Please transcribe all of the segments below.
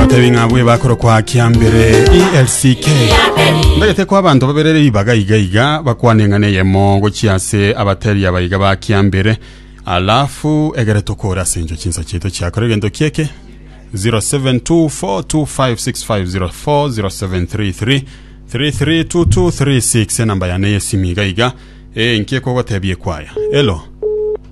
Atebi ng'a bwe bakorokwa kiambere ELCK. Ndagete kwa abanto baberere ribaga iga iga bakwane ng'a neyemo gochia ase abateri abaiga ba kiambere. Alafu egere tokore ase encho chinsa chiaito chiakora egento kieke 0724256504 0733 332236 enamba yane yesimi iga iga enki ekogotebia ekwaya elo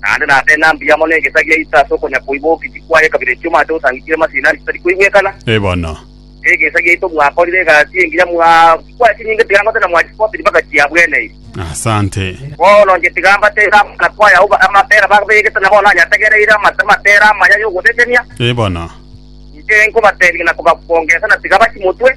Naende nase ng'a mbuya mono egesa gia Yeso ase okonya-koibokichia kwaye kabere echio mate osangigire masini ande chitari koigwekana. Ee bono. Egesa giaito mwakorire egasi engiya, mwachikwa chinyinge tiga ngoteba mwachisopiri mpaka chiabweneire. Asante. Bono inche tiga mbateere amang'ana kwaye agwo amapera babegete na bono anyategereire amatera amaya y'ogotetenia. Ee bono. Inche nkobateebia na kobakwongesa na tiga bachimotwe.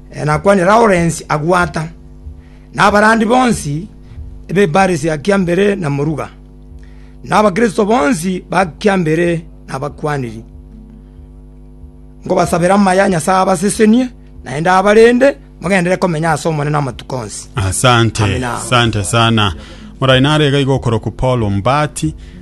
Nakwane Lawrence agwata, na abarandi bonsi b'ebaare sia kiambere na moruga, na Abakristo bonsi ba kiambere nabakwaniri, nkobasabera amaya Nyasae abasesenie, naende abarende mogenderere komenya ase Omonene amatuko onsi. Asante, Amina. asante sana. Morainare iga iga okorokwa Paul Mbati.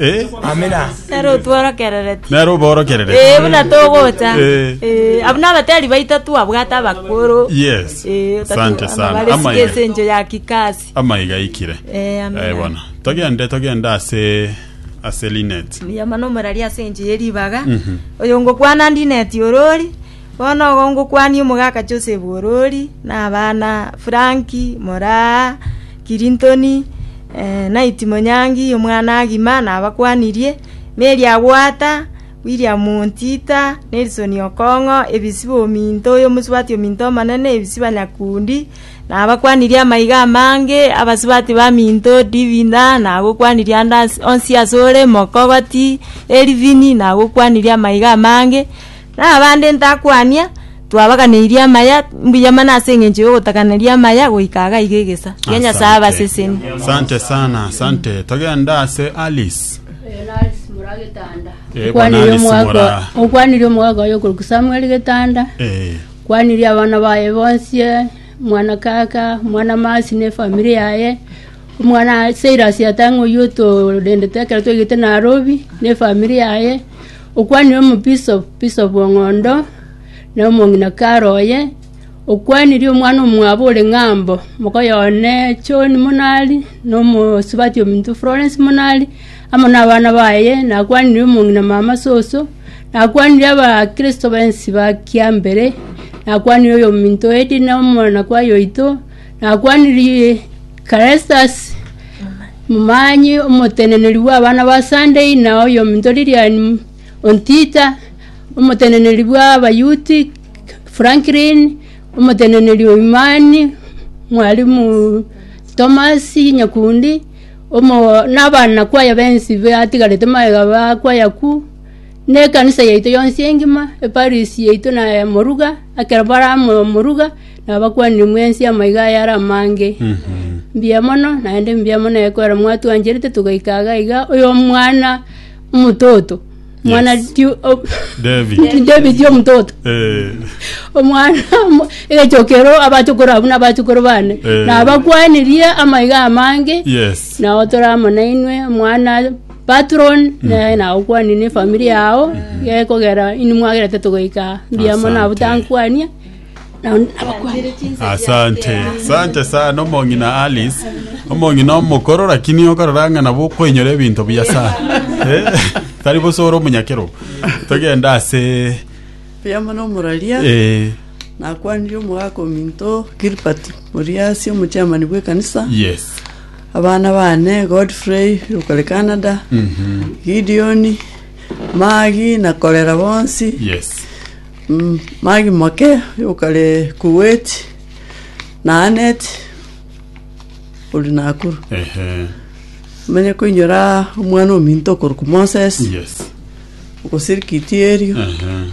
Eh, Amina. Nero otworokerereti. nero oborokerere Eh, buna togocha. Eh. Eh, abwo nabateri baito twabwate abakoro. yes Eh, otatu- asante sana amabare amaiga sikese encho ya kikasi. amaiga ikire Eh, amina. Eh, bona togende togende ase ase linet Yamana omorari ase enche yeribaga. Oyo ngokwana ndineti orori. Bono ogo ngokwania omogaka Joseph Orori, na abana Franki, moraa Kirintoni, Naiti Monyangi, omwana Agima, nabakwanirie, Mary Agwata, William Ontita, Nelson Okong'o, Ebisiba ominto, oyomosubati ominto omonene, Ebisiba Nyakundi, nabakwanirie amaiga amange, abasubati baminto, Divinda, nagokwanirie ande onsi asore, Mokogoti, Elvin, nagokwanirie amaiga amange. Na abande ntakwania, twabaganeirie amaya, mbuya mana ase engencho y'ogotakaneria amaya goika iga iga egesa kia Nyasae abaseseni. Asante sana, asante. Togende ase Alice. Eh, bwana Alice Mora. okwanirie omogaka oye okorokwa samuel getanda Eh, kwanirie abana baye bonsi eh, mwana kaka mwana masi ne famiri yaye omwana seirasi yatang'a oywo otorendete ekero twaigete narobi ne famiri yaye Okwanire omobisopu o ng'ondo, na omong'ina kare oye, okwanirie omwana omwabo ore ng'ambo, mokoye one John Munali, na omosubati ominto Florence Munali, amo nabana baye, nakwanire omong'ina mama soso, nakwanire abakristo bonsi ba Kiambere, nakwanire oyominto Edina, omwanakwe aye oito, nakwanire Crestus, momanyi omoteneneri bw'abana ba Sunday na oyominto Lilian, ontita, omoteneneri bw'abayouth, Franklin, omoteneneri o Imani, mwalimu Thomas Nyakundi, omo n'abanakwaya bensi batigarete magega bakwaya ku, na ekanisa yaito yonsi engima, eparisi yaito na Moruga, ekero bare amo Moruga. Nabakwanire mwensi amaiga aya are amange. Mbuya mono, naende mbuya mono ekwera mwatwancherete togaika iga iga oyomwana omototo. Mwana Yes. Ju- o- David. David omototo. Eh, Omwana omo- egechokero abachokoro abwo nabachokoro bane. Eh. Nabakwanirie amaiga amange. yes. nao tore amo nainwe mwana patron naye nao kwani ne familia yao gekogera ini mwagerete togoika mbiamo nabo Asante. tankwania Asante, asante sana omong'ina Alice, omong'ina omokoro lakini okarora ng'a nabo okwenyora ebinto buya sana. Eh, tari bosa ore omonyakerogo. Togende ase Buya mono omoraria eh, nakwanire omogaka ominto Gilbert Moriasi omochairman bw'ekanisa yes. abana bane Godfrey okore Canada Mhm. Gideon Magi na Korera bonsi Yes. Mm, magi make yokare Kuwait na Anet ori Nakuru. Ehe. Menye koinyora omwana ominto okorokwa Moses Yes. ogosirikiti erio Ehe.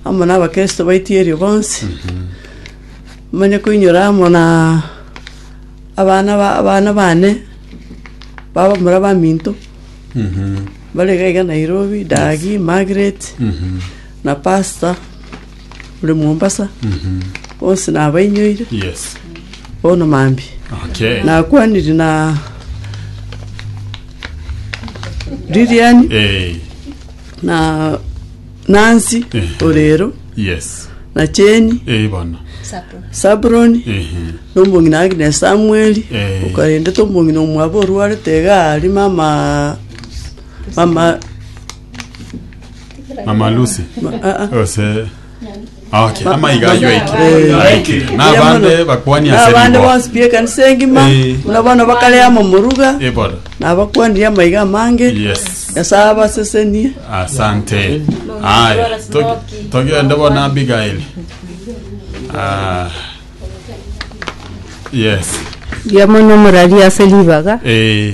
amo na abakristo baiti erio bonsi. Menye koinyora amo na abana ba- abana bane baba mura baminto Mhm. bare gaiga Nairobi, Dagi, Margaret, Mhm. na pastor ore Mombasa bonsi nabainyoire Yes. bono mambia Okay. nakwaniri na Lilian Eh, na Nancy Eh. Orero yes. na Cheni Eh, bono. Sapo. Sabron Eh, nombongi na Agnes Samuel Eh. ukarende tombongi na omwabo orwarete iga ari mama mama mama lucy ose okay amaiga aywo aike aike nabande bakwani ase abande rigo bonsi pi ekanisa engima Eh. buna bono bakare amo moruga ebora nabakwanire amaiga amange yes nyasaye abasesenie asante haya to- togende bona abigaili Ah, yes Ndiamona omorari ase ribaga eh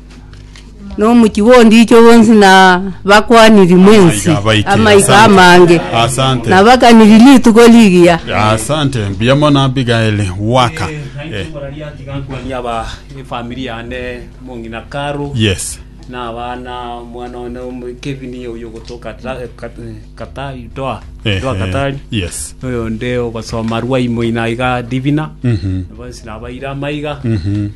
na omochie bw'ondicho bonsi, na bakwaniri mwensi Amaiga abaikire, amaiga asante. amange, Asante. na bakaniri rituko rigiya. asante mbuya mono abigaeli waka eh, Kwania aba efamiri yane mong'ina Caro yes na abana omwana one omo- Kevin oyo ogotoka ta- eh, Kat- eh, Katari Doha Eh, Doha eh, Katari yes noyo onde ogosoma Rwaimoina iga Divina Mhm. bonsi nabaire amaiga Mhm.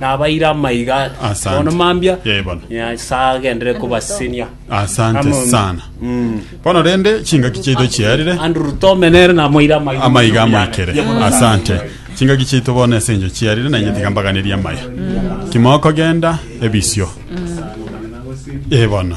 Nabaire amaiga aya. Asante. Bono mambia. Yee, bono. Nyasae agenderere kobasesenia. Asante Amen. sana. Mm. Bono rende chingaki chiaito chiarire Andrew Tome nere namoire amaiga. amaiga amoikere. Ye bono. Asante. Chingaki chiaito bono ase enyo chiarire na inye tiga mbaganerie amaya. Kimokogenda ebisio. Ee bono.